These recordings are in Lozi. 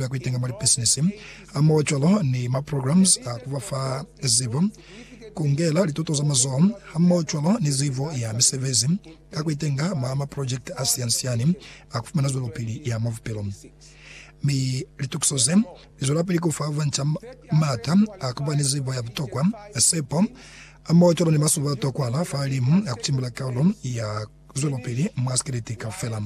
ba kuitenga mwa lipisinisi, hamohocwalo ni maprograms a ku ba fa zibo, kungela lituto za mazoho, hamohocwalo ni zibo ya misebezi ka kuitenga mwa maprojekiti a siani-siani a kufumana zwelopili ya mwa bupilo. Mi litukiso ze, lizwelapili kufa banca maata a kuba ni zibo ya butokwa, sepo, hamohocwalo ni masuba a tokwahala fa limu a kutimbula kaulo ya Zwelopili mwa sikeleti kaufela.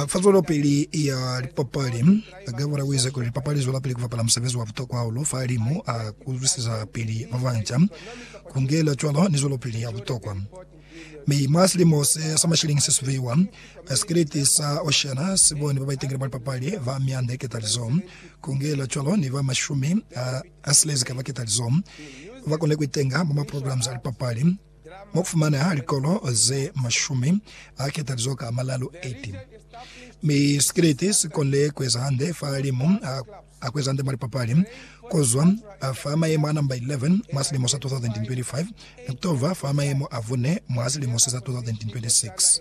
Fa zwelopili ya lipapali, Gabor u ize kuli lipapali li zwelapili ku bapala musebezi wa butokwa hahulu fa limu a kuzwisezapili ba banca. Ku ngela cwalo ni zwelopili ya butokwa. Mi mwa silimo se sa mashilini se subehiwa, sikeleti sa Oceana si boni ba ba itangile mwa lipapali ba mianda ketalizo. Ku ngela cwalo ni ba mashumi a silezi ka ba ketalizo ba konile ku itenga mwa maprograms a lipapali. Mu fumana likolo ze mashumi a ketalizo ka malalu, 18. Mi sikiliti si konile ku eza hande fa limu a, a ku eza hande mwa lipapali, ku zwa fa mayemo a namba 11 mwa silimo sa 2025 ni ku to ba fa mayemo a bune mwa silimo se sa 2026.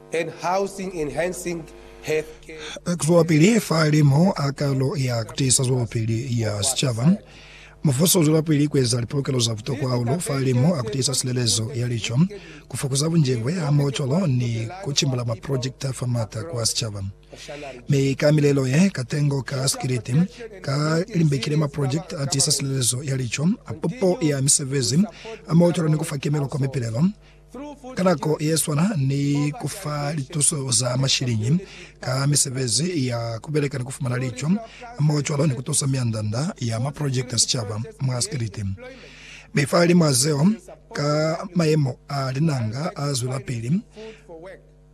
and Housing Enhancing Health Care. Zwelapili fa limo a kalo ya kutiisa zwelopili ya sicaba. Mubuso uzwelapili kueza lipolokelo za butokwa hahulu fa limo a kutiisa silelezo ya lico, kufokoza bunjebwe hamoho cwalo ni kucimbula maprojekiti afa maata kwa sicaba. Mi ka milelo ye, katengo ka sikiliti ka limbekile maprojekiti atiisa silelezo ya lico, pupo ya misebezi, hamoho cwalo ni kufa kemelo kwa mipilelo Ka nako yeswana ni ku fa lituso za mashiliñi ka misebezi ya ku beleka ni ku fumana lico hamoho cwalo ni ku tusa mianda-nda ya maprojekiti a sicaba mwa sikiliti, mi fahalimw'a zeo, ka mayemo a linanga a zwelapili.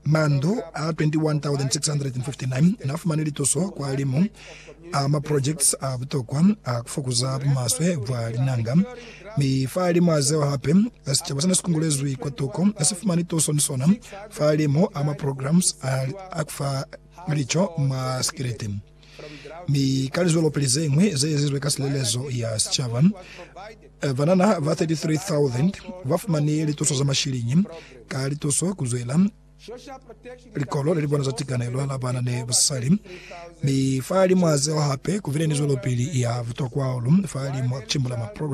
Mandu a 21,659 n'a fumani lituso kwa limu a maprojekts a butokwa a ku fokuza bumaswe bwa linanga, mi fahalimw'a zeo hape, sicaba se ne si kungulezwi kwa tuko ne si fumani tuso ni sona fahalimu a maprograms a ku fa lico mwa sikiliti. Mi ka lizwelopili ze ñwi ze ezizwe ka silelezo ya sicaba, eh, banana ba 33,000 ba fumani lituso za mashiliñi ka lituso ku zwela likolo le li bona za tikanelo la bana ni basali. Mi fa limu a zeo hape ku bile ni zwelopili ya butokwa hahulu fa limu a ku cimbula maprogram